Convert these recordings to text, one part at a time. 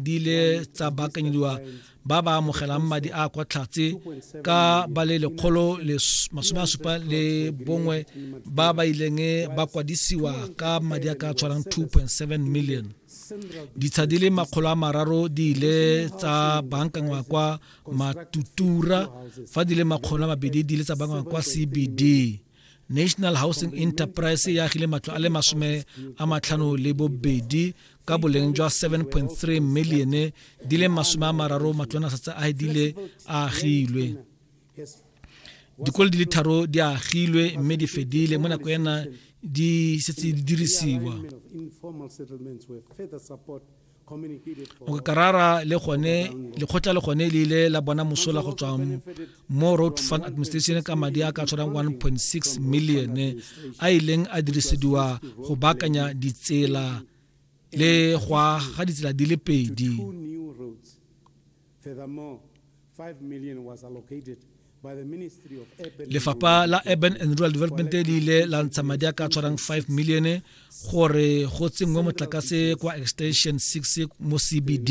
di ile tsa baakanyediwa ba ba amogelang madi a kwa tlhatse ka ba le lekgolo le masome a supa le bongwe ba ba ileng ba kwadisiwa ka madi a ka tshwarang 2.7 million ditsha di le makgolo a mararo di ile tsa bankangwa kwa matutura fa di le makgolo a mabedi di ile tsa bankangwa kwa cbd national housing enterprise e agile matlo a le masome a matlhano le bobedi ka boleng jwa 7.3 milione di le masome a mararo matlwanasatsa a edile a agilwe dikolo di le tharo di agilwe mme di fedile mo nako ena di setse di dirisiwa mokakarara le gone lekgotla le gone le ile la bona mosola go tswa mo road fund administration ka madi a ka tshwarang 1.6 million a ileng a dirisediwa go baakanya ditsela le go aga ditsela di le pedi lefapha la urban and rural development le ile la ntsha madi a ka tshwarang 5 million gore go tsenngwe motlakase kwa extension 6 mo cbd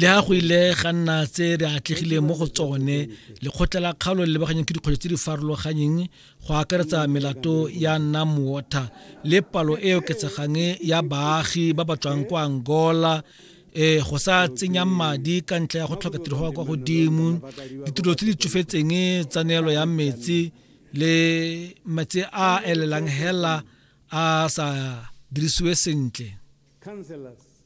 le a go ile ga nna tse re atlegileng mo go tsone lekgotla la kgaolo le lebaganyang ke dikgwetlho tse di farologanyeng go akaretsa melato ya nam water le palo e oketsegang ya baagi ba ba tswang kwa angola eh go sa tsenya madi ka ntlha ya go tlhoka tiro go kwa godimo ditiro tse di tsofetseng tsa neelo ya metsi le metsi a elelang hela a sa dirisiwe sentle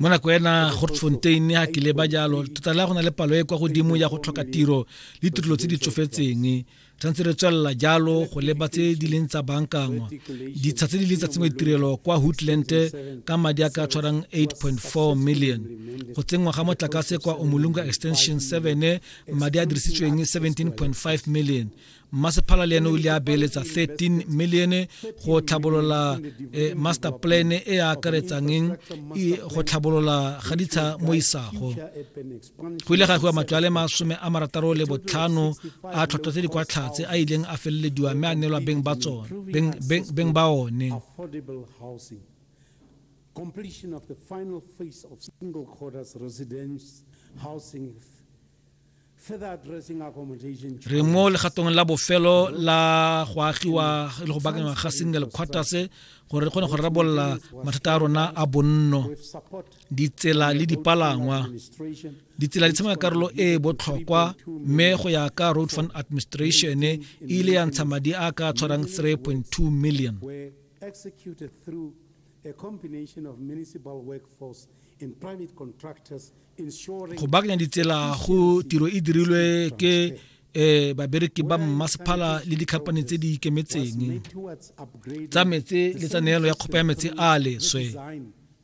mo nako ena gortfontein a tlile ba jalo tota le go na le palo e kwa godimo ya go tlhoka tiro le tirelo tse di tsofetseng tshwanetse re tswelela jalo go leba tse di leng tsa bankangwa ditsha tse di leng tsa tsengwe ditirelo kwa hoodland ka madi a ka tshwarang 8.4 million go tsenngwa ga motlakase kwa omolunga extension 7 madi a dirisitsweng 17.5 million mmasephala le ene o ile a beeletsa 13 million go tlhabolola eh, master plan e e akaretsang eng e, go tlhabolola ga ditsha mo isago go ile ga fiwa matlwale masome a marataro le botlhano a tlhotlho tse di kwa tlhatse a ileng a felelediwa mme a neelwa beng ba tsone beng ba one completion of the final phase of single quarters residence housing re mo legatong la bofelo la go agiwa le go bakangwa ga single quarters gore re kgone go rarabolola mathata a rona a bonno ditsela le dipalangwa ditsela di tshameka karolo e e botlhokwa mme go ya ka road fund administration e ile ya ntsha madi a ka tshwarang 3.2 million a combination of municipal workforce and private contractors ensuring Go baakanya ditsela go tiro e dirilwe ke eh babereki ba mmasephala le dikhamphane tse di ikemetseng tsa metse le tsa neelo ya kgopa ya metse a leswe